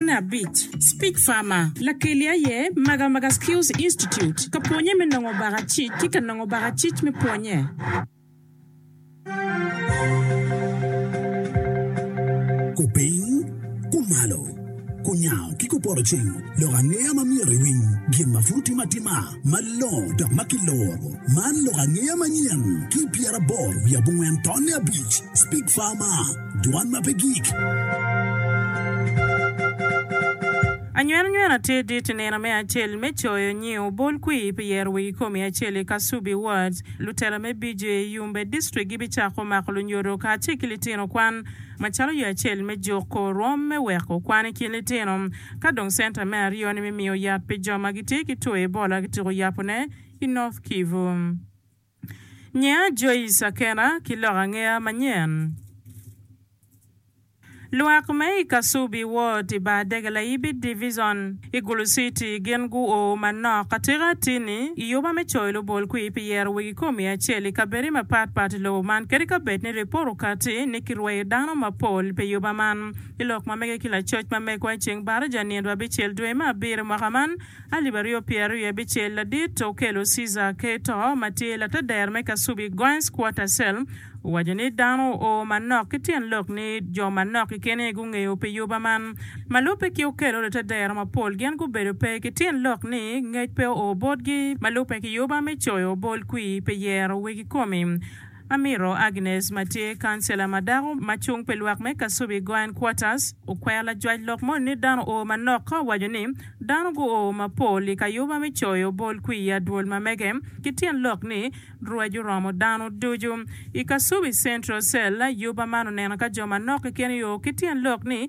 Mukene abic, Speech Farmer, Lakeli aye Magamaga Skills Institute ka pwonye me nongo baka cic ki ka nongo baka cic me pwonye. Kupiny, kumalo, kunyango ki kupoto cing lok angeya ma myero iwiny gin ma pud timo atima malongo dok ma kiloro. Man lok angeya manyen ki i pyeraboro wiye abongwen tonne abic. Speech Farmer. Dwan ma pe gik. Anywenanywena tye dit i nino me acel me coyo nyiu bol kwir pi yero wi kikomi acel i Kasubi Ward. Lutela me BJA Yumbe District gibicako mako lunyodo kacel ki litino kwan macalo yo acel me juko rwom me weko kwan i kin litino ka dong center me aryo ni me miyo yat pi jo ma gitye ki two Ebola kitiko yabo ne i North Kivu. Ngeya Joyce Akena ki lok angeya manyen. Lwak me i Kasubi Ward i bar dege Layibi Divizon i Gulu Citi gin guo manok atika atini i oba me coyo lubolkwi pi yero wegi komi acel i kabedi mapat pat i lobo man kadi ka bed ni ripot okati ni kirweyo dano mapol pi oba man. I lok ma mege ki lacoc ma megwa i ceng baraja nino abicel dwe me abiro mwaka man, alip aryo pyeraryo abicel ladit okelo Cesar Cato ma tye latader me kasubi Guines Quarter Cell owaco ni dano o manok ki tyen lok ni jo manok kekeni gungeyo pi yuba man. Ma lubbe ki okelo lutatdero mapol gin gubedo pe ki tyen lok ni ngec pe oo botgi ma lubbe ki yuba me coyo bol kwii pi yero wegi komi. Amiro Agnes ma tye kancela ma dako ma cung pi lwak me Kasubi Goan Quarters okwero lajwac lok moni ni dano oo manok ka owaco ni dano guo mapol i kayuba me coyo bol kwiya dwol ma mege ki tyen lok ni rwec oromo dano ducu i Kasubi Central Cell. Yuba man oneno ka jo manok keken yoo ki tyen lok ni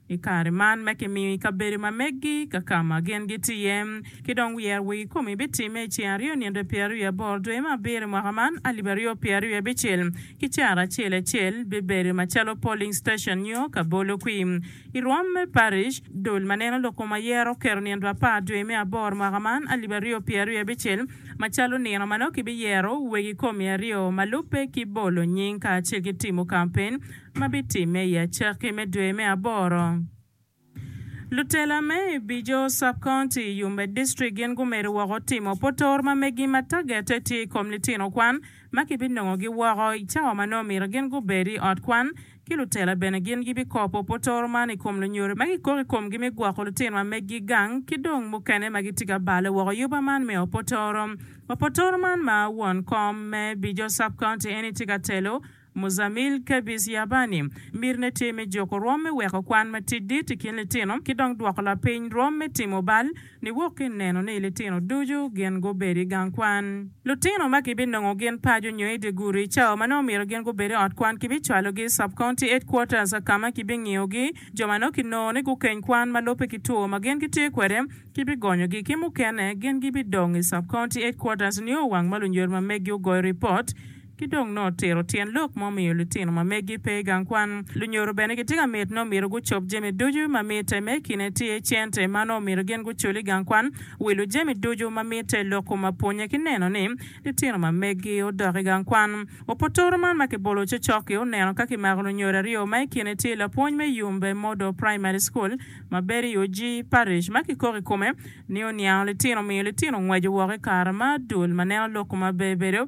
I kare man ma kimiyo i kabedo ma meggi ka ka ma gin gitye iye, ki dong wiyer wa i komi bitimme i ceng aryo nino pyeraryo aboro dwe me abiro i mwaka man, alip aryo pyeraryo abicel ki caro acel acel bibedo macalo polling station nyo ka bolo kwim i rwom me parish. Dul ma neno loko ma yero oketo nino apar dwe me aboro mwaka man, alip aryo pyeraryo abicel macalo nino ma nongo kibiyero wegi komi aryo ma lubbe ki bolo nying kacel ki timo kampen ma bitimme i acakki me dwe me aboro. Lutela me Ibijo Sub-County, Yumbe District gin gumedo woko timo potor ma megi ma tagette tye i kom litino kwan ma kibinongogi woko i cawa ma nongo myero gin gubed i ot kwan ki lutela bene gin gibikopo potor man i kom lunyodo ma kikoko i komgi me gwoko lutino ma megi gang ki dong mukene ma gitye ka balo woko yuba man me opotoro. Opotoro man ma won kom me Ibijo Sub-County Annie tye ka telo, Muzamil Kebis Yabani, Mirne tye me juko rwom me weko kwan matidit i kin litino ki dong dwoko lapiny rwom me timo bal niwok ki neno ni litino ducu gin gubedo i gang kwan. Lutino ma kibinongo gin paco nyo i dye gudi i cawa ma nongo omyero gin gubed i ot kwan kibicwalogi i Sub-County Headquarters ka ma kibingiyogi. Jo ma nongo kinongo ni gukeny kwan ma lubbe ki two ma gin gitye kwede kibigonyogi ki mukene gin gibidong i Sub-County Headquarters nio wang ma lunyodma megi ogoyo ripot ki dong nongo tiro tyen lok ma omiyo litino ma megi pe i gang kwan. Lunyodo bene gitye ka mit nongo myero gucob jami ducu ma mitte me kine tye, cente ma nongo myero gin gucul i gang kwan, wilo jami ducu ma mitte, loko ma pwonye ki neno ni litino ma megi odok i gang kwan. Opotoro man ma kibolo cocok-ki oneno ka kimako lunyodo aryo ma i kine tye lapwony me Yumbe Model Primary School ma bedo i Oji Parish ma kikok i kome ni oniango litino omiyo litino ngweco woko i kare ma dul ma neno loko ma bebedo